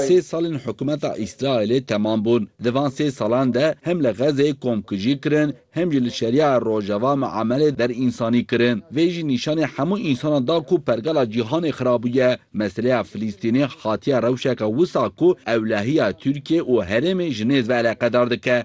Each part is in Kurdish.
Sê salên hikûmeta Îsraîlê temam bûn. Di van sê salan de hem li Xezê komkujî kirin, hem jî li Şeria ya Rojava miamelê derînsanî kirin. Vê jî nîşanê hemû însanan da ku pergala cîhanê xirabûye. Meseleya Filîstînê hatiye rewşeke wisa ku ewlehiya Tirkiyê û herêmê ji nêz ve eleqedar dike.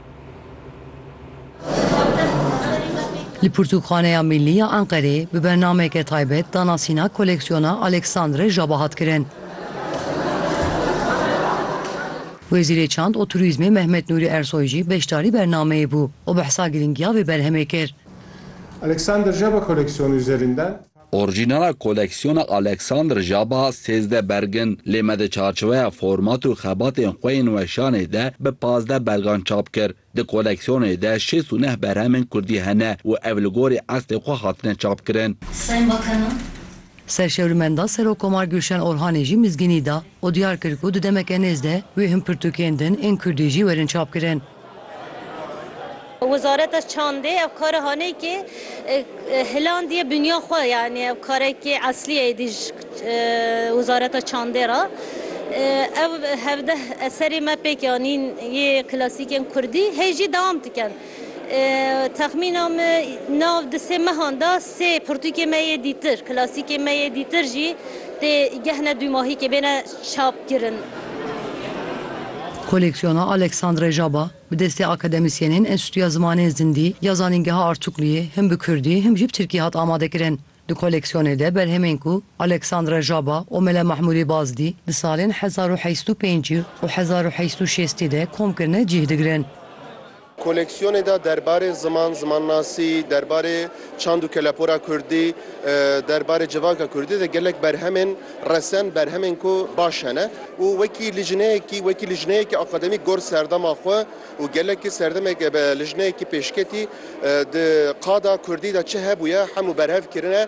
Li Pirtûkxaneya Mîllî ya Enqerê bi bernameke taybet danasîna koleksiyona Alexandre Jaba hat kirin. Wezîrê Çand û Turîzmê Mehmet Nûrî Ersoy jî beşdarî bernameyê bû û behsa girîngiya vê berhemê kir. Alexandre Jaba koleksiyonê üzerinden. Orjînala koleksiyona Alexander Jaba sêzdeh berg in, lê me di çarçoweya format û xebatên xwe yên weşanê de bi pazdeh bergan çap kir. Di koleksiyonê de şêst û neh berhemên kurdî hene û ev li gorî eslê xwe hatine çapkirin. Sayın Bakanım. Serşewrimenda Serokomar Gülşen Orhanê jî mizgînî da û diyar kir ku di demeke nêz de wê hin pirtûkên din ên kurdî jî werin çapkirin. Wezareta Çandê ev kara haneyke hilandiye binya xwe yanî ev karekê eslî ye êdî ji Wezareta Çandê re. Ev hevdeh eserê me pêk anîn yê klasîkên Kurdî hê jî dewam dikin. Texmîna min nav di sê mehan de sê pirtûkê me yê dîtir, klasîkê me yê dîtir jî tê gehne dûmahîkê bêne. çap kirin. Koleksiyona Alexandre Jaba bi destê akademîsyenên Enstîtuya Zimanên Zindî ya Zanîngeha Artukluyê him bi kurdî him jî bi tirkî hat amadekirin. Di koleksiyonê de berhemên ku Alexandre Jaba û Mele Mahmûrê Bazdî di salên hezar û heşt û pêncî û hezar û heşt û şêstî de kom kirine cîh digirin. Koleksiyonê de derbarê ziman, zimannasî, derbarê çand û kelepora kurdî, derbarê civaka kurdî de gelek berhemên resen, berhemên ku baş hene û wekî lijneyekî, wekî lijneyekî akademîk gor serdema xwe û gelekî serdemek ebe lijneyekî pêşketî di qada kurdî de çi hebûye hemû berhev kirine.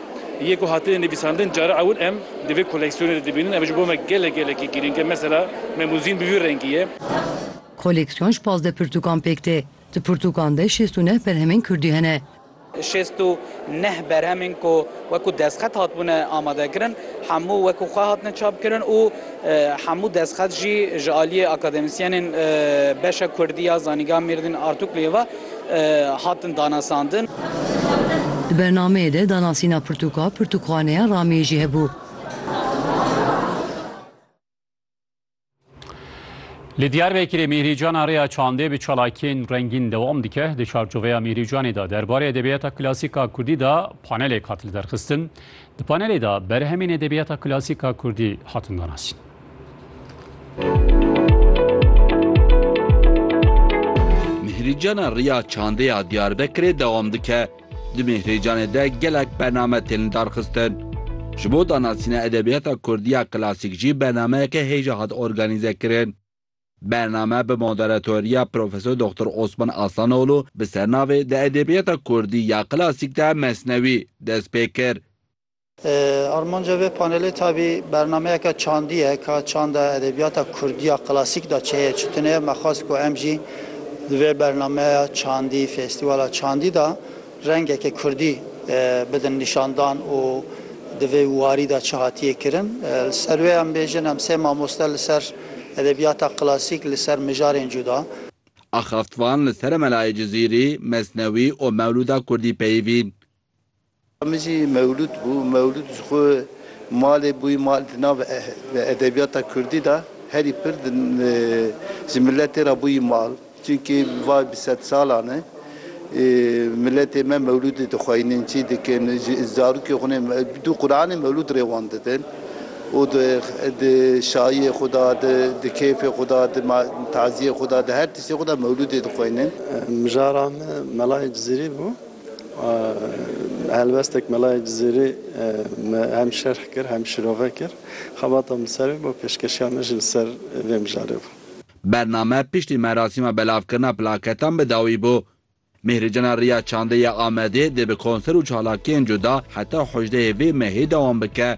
Yê ku hatine nivîsandin cara ewil em di vê koleksiyonê de dibînin ev ji bo me gelek gelekî girîng e. Mesela Memûzîn bi vî rengî ye. Koleksiyon ji pazdeh pirtûkan pêk tê. Di pirtûkan de şêst û neh berhemên kurdî hene. Şêst û neh berhemên ku wekû destxet hatibûne amadekirin hemû wekû xwe hatine çapkirin û Hemû destxet jî ji aliyê akademîsyenên beşa kurdî ya Zanîngeha Mêrdîn Artukluyê ve hatin danasandin. Di bernameyê de danasîna pirtûka Pirtûkxaneya Ramiyê jî hebû. Li Diyarbekirê Mîhrîcana Rêya Çandê bi çalakiyên rengîn dewam dike. Di çarçoveya Mîhrîcanê de derbarê edebiyata klasîk a kurdî de panelek hat liderxistin. Di panelê de berhemên edebiyata klasîk a Kurdî hatin danasîn. Mîhrîcana Riya Çandê ya Diyarbekirê dewam dike. Di Mîhrîcanê de gelek bername tên lidarxistin. Ji bo danasîna edebiyata Kurdî ya klasîk jî bernameyeke hêja hat organîzekirin. Bername bi moderatoriya Profesor Doxtor Osman Aslanoğlu bi sernavê Di edebiyata kurdî ya klasîk de Mesnewî dest pê kir. Armanca vê panelê tabî bernameyeke çandî ye ka çanda edebiyata kurdî ya klasîk de çi heye çi tune ye. Me xwest ku em jî di vê bernameya çandî, festîwala çandî de Rengeke kurdî bidin nîşandan û di vê warî de çi hatiye kirin. Li ser wê em bêjin em sê mamoste li ser edebiyata klasîk li ser mijarên cuda. Axaftvan li ser Melayê Cizîrî, Mesnewî û Mewlûda kurdî peyivîn. Min jî Mewlûd bû. Mewlûd ji xwe malê bû. Mal di nav edebiyata kurdî de herî pir ji miletê re bû mal. Çimkî va bi sed salan e miletê me mewlûdê dixweynin, çî dikin, ji zarokê xwe ne bi du Quranê mewlûd rê wan didin û di şayiyê xwe de, di kêfê xwe de, di taziyê xwe de, di her tiştê xwe de mewlûdê dixweynin. Mijara me melayê Cizîrî bû. Helwestek melayê Cizîrî me hem şerh kir hem şirove kir. Xebata min ser vê bo pêşkeşiya me jî li ser vê mijarê bû. Bername piştî merasîma belavkirina plaketan bi dawî bû. Mîhricana Riya Çandê ya Amedê dê bi konser û çalakiyên cuda heta hûjdeyê vê mehê dewam bike.